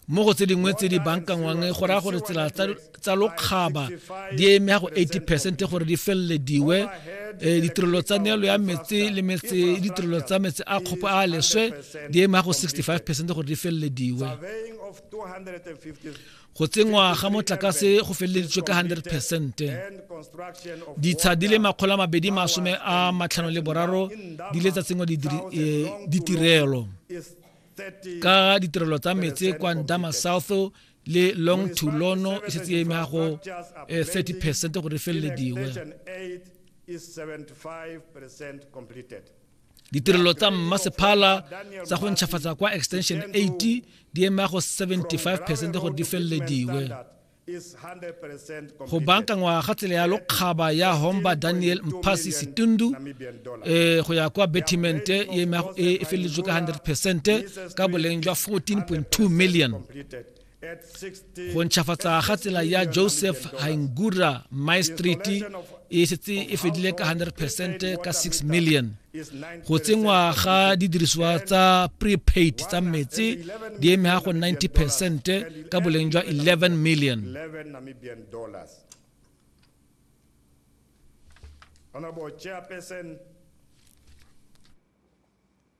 mo go tse dingwe tse di bankanngwang go raya gore tsela tsa lokgaba di eme ya go 80 percent gore di felelediwe um ditirelo tsa neelo ya metse le metse ditirelo tsa metse a kgopo a leswe di eme ya go 65 percent gore di felelediwe go tsenngwa ga motlakase go feleleditswe ka 100 percent ditsha di le makgolo a mabedi masome a matlhano le boraro di le tsa tsenngwa e, ditirelo ka ditirelo tsa metse kwa ndama south le long to lono e setse e emega go 30 eh, percent gore e felelediwe ditirelo tsa mmasephala tsa go ntšhafatsa kwa extension 80 di ema go 75 percent gore di felelediwe go bankangwa ga tsela ya lokgaba ya homba daniel mpasi setundu um go ya kwa betimente e, e feleletswe ka 100 percent ka boleng jwa 14.2 million go ntšhafatsa ga tsela ya joseph haingura maestriti e setse e fedile ka 100 percent ka 6 million go tsenngwa ga didiriswa tsa prepaid tsa metsi di eme ga go 90 percent ka boleng jwa 11 million Honorable Chairperson,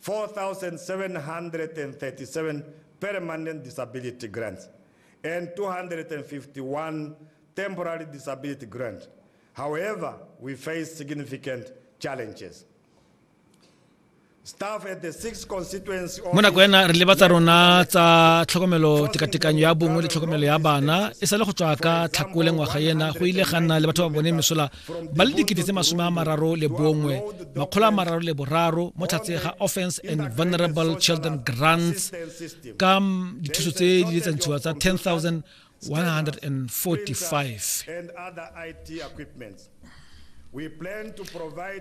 4,737 permanent disability grants and 251 temporary disability grants. However, we face significant challenges. Staff at the six constituency mo nako ena re leba tsa rona tsa tlhokomelo tekatekanyo ya bongwe le tlhokomelo ya bana e sale go tswa ka tlhakole ngwaga ena go ile ga nna le batho ba bone mesola ba le dikete tse masome a mararo le bongwe makgolo a mararo le boraro mo tlhatse ga offense and vulnerable children grants ka dithuso tse di letsantshiwa tsa 10 145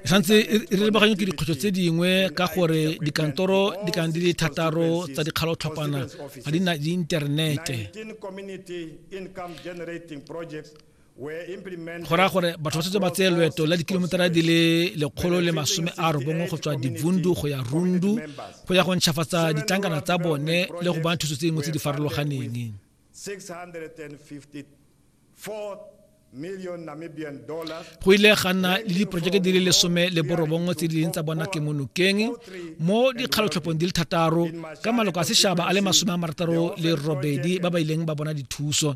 tshwanetse re lebaganye ke dikgwetlho tse dingwe ka gore dikantoro di kana di le thataro tsa dikgalotlhopana ga di na diinternete go raya gore batho ba setse ba tseye loeto la dikilometara di le lekgolo le masome a robongwe go tswa divundu go ya rundu go ya go ntšhafatsa ditlankana tsa bone le go bana thuso tse dingwe tse di farologaneng go ile ga nna le diporojeke di le lesome le borobongwe tse di leng tsa bona ke monokeng mo dikgalotlhophong di le thataro ka maloko a sešaba a le masome a marataro le robedi ba ba ileng ba bona dithuso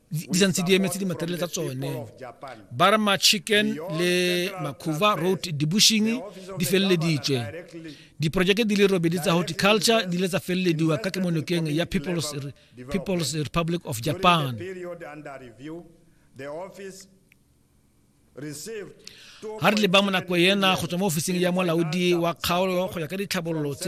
ditsantsi di emetse dimaterele tsa tsone barma chicken le makhuva road dibushing di feleleditswe diporojeke di le robedi tsa horticulture di le tsa felelediwa ka kemonokeng ya people's, people's republic of japan ga re leba mo nako ena go tswa mo ofising ya molaodi wa kgaolo go ya ka ditlhabololo tse